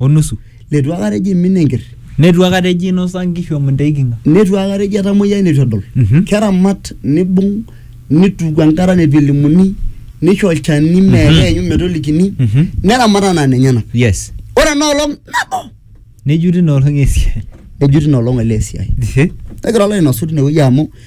o nusu. Leitu akata eji imin enker. Neitu akata eji inosa nkishu amu inta eikinga. Neitu akata eji etamoyia neitu edol. Mhm. Keramat nibung nituku enkata neitu elimuni neisho olchani mee keenyu metolikini Mhm. neramat anaa nenyenak. Yes. Ore ena olong nabo Nejuti ina olong esiai. ejuti ina olong ele esiai. Ehe. Negira alo ainosu tine wueji amu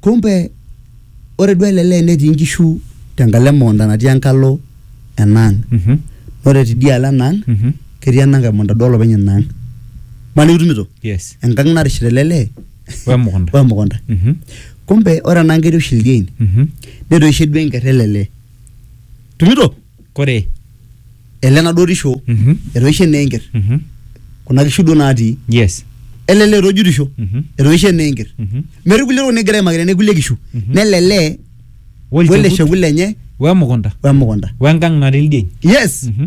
Kumbe ore duo ele lee netii nkishu tenkalo emukunta natii enkalo enaang. Mhm. Ore tidialo enaang Mhm. ketii enankae mukunta duo olopeny inaang. Maniki itumito? Yes. Enkang narishita ele lee Wemukunta. wemukunta. Mhm. Kumbe ore enaang ketii oshi ildiein. Mhm. Netoishe duo enker ele lee. Itumito? kore ele naduo tisho Mhm. etoishe naa enker Mhm. kuna kishu duo naatii yes ele lee etojutisho Mhm. etoishe naa enker Mhm. metii kulie tokitin nigira aimaki tene kulie kishu Mhm. nele lee wele Wolchekut, shekut lenye wemukunta wemukunta wengang natii ildien yes Mhm.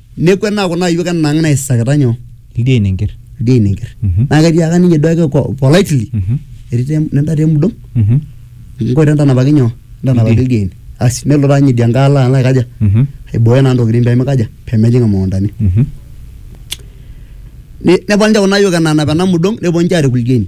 nekwet naa kuna ayiok enang naisakita nyoo Ildia inenker. ildia inenker Mhm. naa ketiaka ninye duo ake ko- politely Mhm. etii te- nenda te mudong Mhm. nkoito entanapaki nyoo entanapaki Ildia. ildia ine asi nelo taa ninye idia nkae alo alo aikaja Mhm. aibooyo naa ntokitin pemikaja pemejing imukuntani Mhm. Ne- neponu ninche kuna ayiok enanap ena mudong neponu ninche arik ildia ine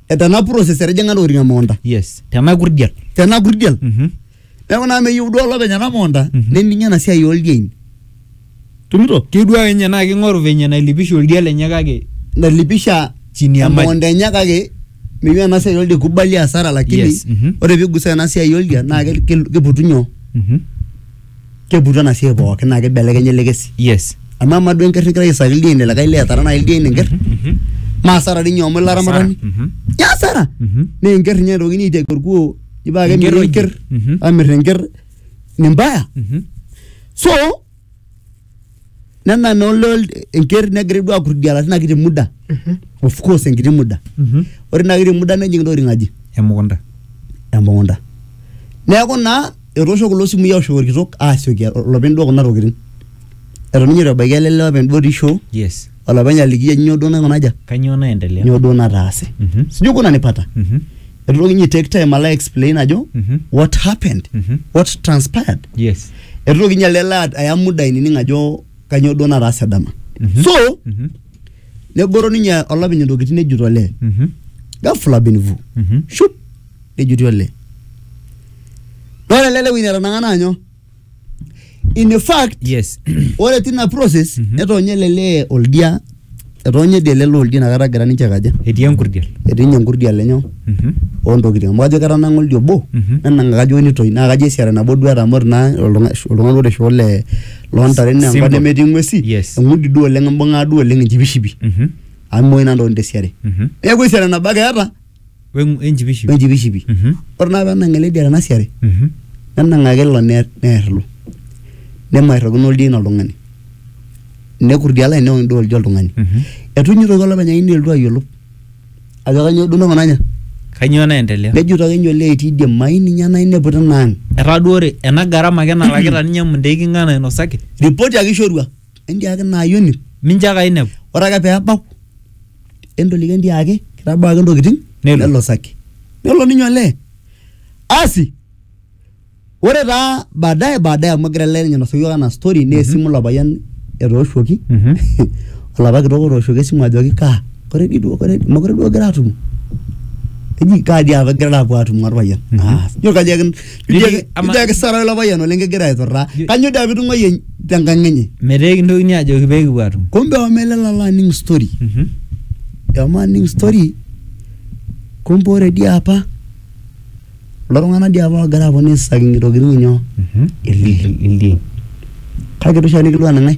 eh, tena process etijing'a ntokitin emukunta yes tena kurdia tena kurdial Mhm. neeku naa meyieu duo olopeny ena mukunta Mhm. nening ena siai oldiein tumito kidua enye naa king'oru venye nailipisha oldia lenye kake nalipisha Chini ya maji. emukunta enye kake meyieu ena siai oldia kubali asara lakini Yes, mhm. ore pigusa ena siai oldia naa ke- ke- keputu nyoo Mhm. keputu ena siai pookin naa kibelekenya ele kesi yes amu amaa duo enker nigira aisaki ildien likae lee etara naaji ildien enker maa asara dii ninye amu ilo aramatani ya asara naa enker ninye naitokini aiteki orkuo nipaa ake Enker emiri oje. enker Mhm. amir enker ni mbaya so nena nolol enker negira duo akurdiala tina kiti muda of course enkiti muda ore ina kiti muda nejing intokitin aji emukunta emukunta neeku naa etoosho kulo simui aoshoki orkitok asioki olopeny duo kuna tokitin eton ninye itu ebaiki ele lee openy duo otii shoo yes olopeny aliki ajo nyoo duo naikuna aja kanyoo naendelea nyoo duo nataase Mhm. sijui kuna nipata Mhm. etu toki ninye take time alo explain ajo Mhm. what happened Mhm. what transpired yes etu toki ninye alo elo aya muda ainining ajo kanyoo duo nataase dama Mhm. so Mhm. negoro ninye olopeny intokitin nejut olee Mhm. ghafla bin vu Mhm. shup nejuti olee nore ele lewueji netanang'a naa nyoo in a fact yes ore tina process netoonye ele lee oldia etoonye dii ele lee oldia inakata egira ninche kaja etii enkurdiel etii ninye enkurdia lenyo Mhm. ontokitin amu ajo ketanang'a oldia obo Mhm. nenang'a kajo nitoi naa kajo esiara nabo duo eeta amu ore naa oltung'a- oltung'ani ore shoo le loontare naa enkop Simple. nemetii ng'uesi Yes. eng'udi duo oleng imbung'aa duo oleng enchipishipi Mhm. amu imoi naa ntokitin tesiare Mhm. neeku esiara nabo ake eeta Weng'u- enchipishipi. wenchipishipi Mhm. ore naa penang ele dia tena siare Mhm. nenang'aki ilo neer neer ilo nemairrokino oldien oltung'ani nekut idialo enye neok endaa oldia oltung'ani Mhm. etu inye itoki olopeny aini elotu ayiolou ajo kanyoo duo nakuna nya Kainyoo naendelea? nejito ake inye olee etii idie mai ninye ena inepu tina ang Etaa duo ore ena garama ake nalakita ninye Mundei king'ae nainosaki? ripoti ake ishorua entiaki ina ayioni mincho ake ainepu ore ake pee ebau entoliki entiaki kitabaa ake ntokitin Nelo. nelosaki nelo ninye olee asi ore taa baadaye baadaye amu egira ele ninye ainosu yiok anaa story naa esimu ilo payian etooshuoki Mhm. olapa kitok otooshoki esimu ajoki kaa kore dii duo kore mokure duo kigira atumo eji kaa dii apa igirara apuo atumo orpayian Mhm. aas ijo kajo ake Ijo Niliki- ake- ama- ijo ake sara ilo payian oleng kegira aiturraa Ye- kanyo doi apa itung'uayie tenkang enye metaa kintokini ajoki pee kipuo atum kumbe omelala alo aning story Mhm. ema aning story kumbe ore dii apa kulo tung'anak dii apa oogira aponu aisaki ntokitin nyoo Mhm. Ildien. ildien kake itu oshiake nikilua nang'ae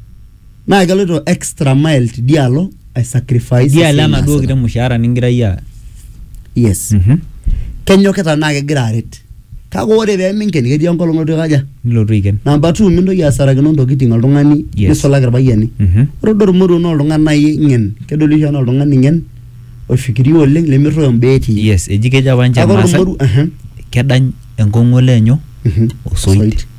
naa keloito extra mile tidialo ai sacrifice idialo esiai enaduo naasita. kiti mushaara ningira iyie aas. yes Mhm. kenyokita naa kegira aret kake ore peminken ketii enkolong olotu aikaja nilotu aiken. namba two mintoki asarakino ntokiting oltung'ani Yes. nisulaki irpayiani Mhm. ore duo ormoruo naa oltung'ani nai ng'en kedoli oshi anaa oltung'ani ng'en oifikiria oleng lemerruoyo imbaa etii yes eji kejo apa ninche kake ore irmaasai ormoruo ehe, kedany enkong'u olee nyoo mhm, osoit.